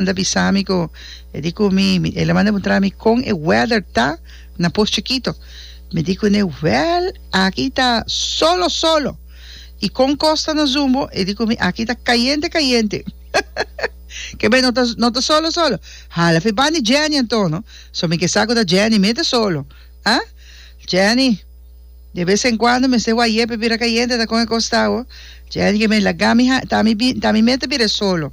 mi ta bisa mi cu e di cu mi mi el a manda puntra mi con e weather ta na Poos Chikito mi di cu ne well aki ta solo solo y con cos ta na zumbo e di cu mi aki ta cayente cayente ke bey no ta no ta solo solo hala fi bandi Jenny anto no so mi ke sa cu ta Jenny mete solo ah Jenny de vez en cuando mester wayé pa bira cayente ta con e cos ta ho Jenny ke bey laga mi ha ta mi bi ta mi mete bira e solo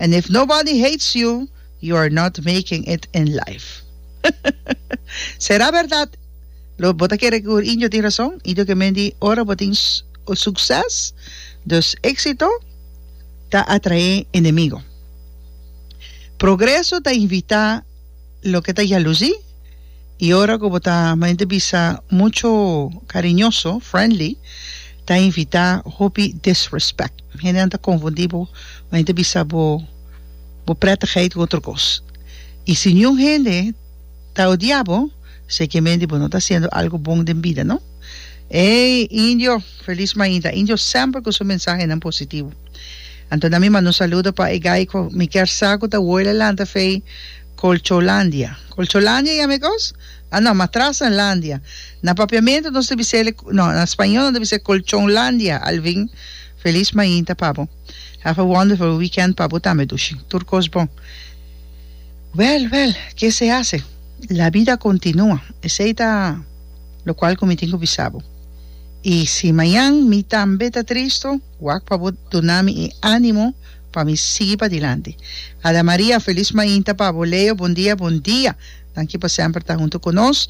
and if nobody hates you, you are not making it in life. Sera berdad? Lo bo ta kere cu indio tin razon? Indio ke men di ora bo tin succes, dus exito, ta atrae enemigo. Progreso ta invita. loke ta yalusí i ora ku bo ta mente bisa mucho kariñoso, friendly, ta invitá hopi disrespect. Hendenan ta konfundí bo mente bisa bo bo prètigheid ku otro kos. I si niun hende ta odia bo, sekemente bo no ta hasiendo algu bon den bida, no? Ey, Indio, felis mainta. Indio semper ku su mensahenan positivo. Anto na mi manda un saludo pa Egai cu mi kier sa cu ta woila lanta fei Colcholandia. Colcholandia yami cos? Ah no, Matrasenlandia. Na Papiamento nos ta bisele, no, na Spañol nos ta bise Colchonlandia, Alvin. Feliz mainta pa bo. Have a wonderful weekend pa bo tambe Dushi. Tur cos bon. Well, well, ke se hace? La bida continua. Esey ta locual cu mi tin cu bisa bo. Y si mañan mi tambe ta tristo, Wak pa bo duna mi e animo pa mi sigui padilanti. Ada Maria, Felis mainta pa bo Leo, Bon dia, bon dia. Danki pa semper ta hunto cu nos.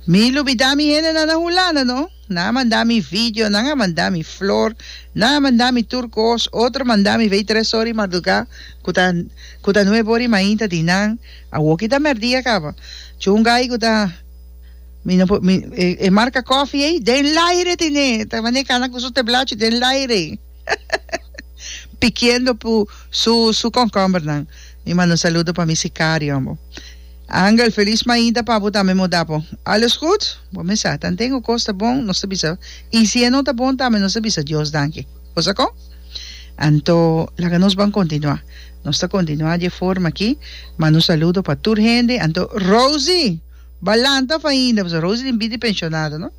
Mi lubida mi hendenan na Hulanda no. Nan a manda mi video, nan a manda mi flor, nan a manda mi tur cos, otro a manda mi vei tres ora di marduga cu ta cu ta nuebe ora di mainta di nan. Awoki ta merdia caba. Cu un gay cu ta. Mi no por, mi, e, e marca coffee ei, den laire tine, ta mane cana cu su teblachi den laire. Pikiendo pu su, su concomber nan. Mi manda un saludo pa mi sicario ambo. Angel, feliz mainta pa bo tambe mo dapo. Alles goed? Bo me sa, tan tengo cos ta bon, nos ta bisa. Y si e no ta bon tambe nos ta bisa Dios danki. Cosa con? Anto, laga nos ban continua. Nos ta continua dje forma aki. Manda un saludo pa tur hende. Anto, Rosie! Balanta fainda, pasobra Rose tin bida di pensionado, no?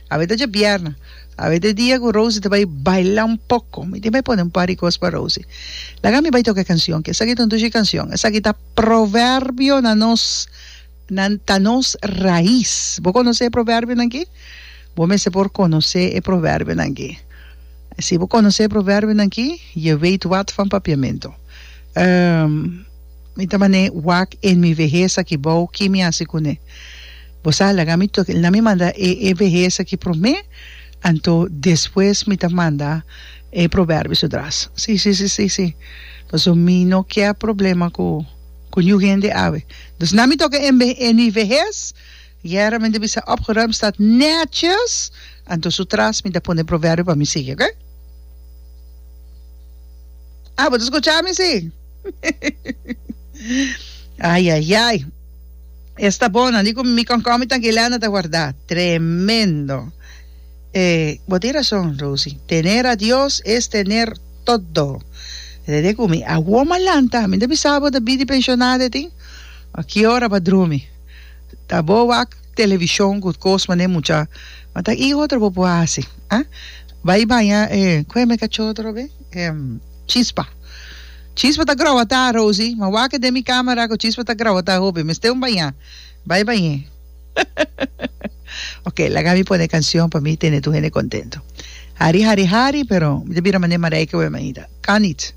Awe ta djabièrna. Awe ta e dia ku Rose ta bai baila un poko. Mi tin bai pone un par di kos pa Rose. Laga mi bai toka e kanshon, ke esaki ta un dushi kanshon. Esaki ta proverbio na nos, na ta nos rais. Bo konosé e proverbionan ki? Bo mester por konosé e proverbionan ki. Si bo konosé e proverbionan ki, je weit wàt van papiamentu. Mi ta man'é wak en mi vehes aki bou, ki mi hasi kuné? Bo sa, laga mi tok el na mi manda e e vehes aki promé, anto despues mi ta manda e proberbio su dras. Sí, sí, sí, sí, sí, paso mi no kier problema ku ku niu hende awe. Dus na mi toka en mi vehes. Guerra men ta bisa opgeruimd staat netjes anto su tras mi ta pone proverbio pa mi sigui oke ah bo ta scucha mi si ayayay esta bona di cu mi concomi tanki Elena ta warda tremendo e bo tin rason Rosy tener a Dios es tener todo rede cu mi a woma lanta mi ta bisa bo ta bidi pensionada tin okiora pa drumi. ta bo wak television cu cos mane mucha ma ta y otro bo por haci ha bay baña e cu me cachó otro be e chispa chispa ta groba ta Rosy ma wak den mi camera cu chispa ta groba ta hopi mester un baña bay bañe ok laga mi pone cancion pa mi tene tur hende contento hari hari hari pero mi ta bira mane Marijke wemba Anita kan niet.